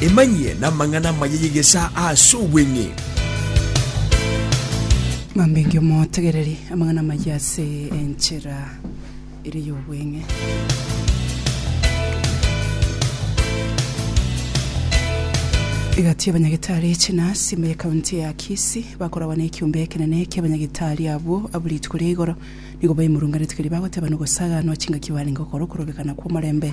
Emanyie namang'ana amaya y'egesaa ase obweng'e. Ng'ambe inki omotegereri amang'ana amaya ase enchera ere y'obweng'e? Egati y'abanyagitari echinasi ime y'ekaunti ya Kisii bakoragwa na ekiombe ekenene ki'abanyagitari abwo abwo rituko ria igoro nigo baimurunganete keria bagoteba nogosaganwa chingaki barenge gokora okorobekana kw'omorembe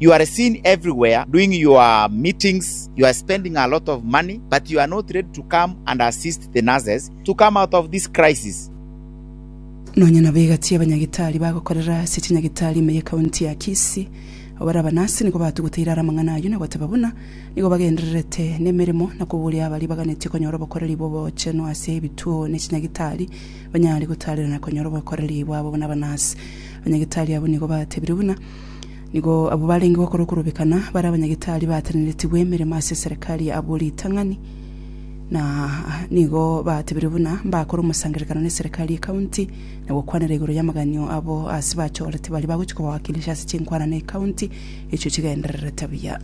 You are seen everywhere doing your meetings, you are spending a lot of money, but you are not ready to come and assist the nurses to come out of this crisis. Nonya nabo egati y'abanyagitari bagokorera ase chinyagitari ime ye county ya Kisii, abare abanasi nigo batuguteire are amang'ana ayio na goteba buna nigo bagendererete nemeremo na koboria abaria baganetie konyora obokoreri bw'obochenu ase ebituo ne chinyagitari banyare gotarerana konyora obokoreri bwabo buna abanasi. Abanyagitari abwo nigo batebire buna Nigo abwo barenge gokora okorobekana bare abanyagitari baatenenetigwe emeremo ase eserekari ya abwo ritang'ani, na nigo batebirie buna mbakore omosangererekano n'eserekari y'ekaunti na gokwanera igoro y'amaganio abo ase bachorete baria bagochia koba wakilisha ase chinkwana na ekaunti echio chigendererete buya.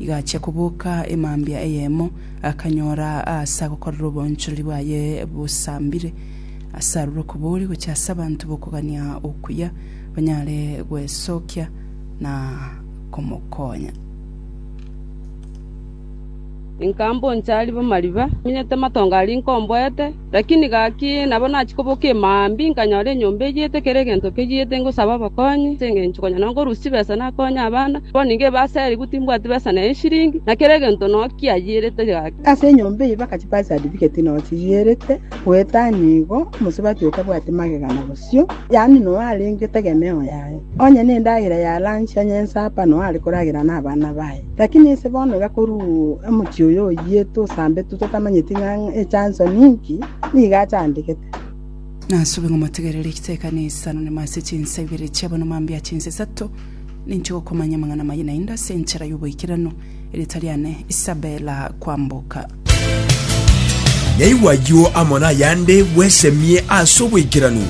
Igachia koboka emambia eyemo, akanyora aase agokorera oboonchoreri bwaye bosambire, ase aroro okobori gochia ase abanto b'okogania okuya, banyare gwesokia na komokonya. Inka mboncha riba mariba, minyete matongo aria inka omboete. Lakini gaki nabo nachia koboka emambia, inkanyora enyomba eyete, kera egento keyete, ngosaba obokonyi, ase engencho konya nonkorusia chibesa nakonye abana. Bono nigo ebaserigwe, timbwati besa na eshiringi, na kera egento noo kiayierete gaki. Ase enyomba eyio bagachia birth certificate noo chiyierete, goeta nigo omosubati oyo tabwati magega na bosio, yaani noo arenge tegemeo yaye. Onye nendagera ya lunch onye ensupper noo are koragera nabana baye. Lakini ise bono iga korwa omochie oyo oyiete osambetwe totamanyeti ng'a echanso ninki, nigo achandegete. Nasube ng'a motegerere egiteka na esano nyuma ase chinsa ibere chi'abanwa mambia a chinsa isato, ninche gokomanya amang'ana amaye naende ase enchera y'oboikeranu, erieta riane Isabela kwamboka. Naigwa ayio amo nayande bwesemie ase oboikeranu.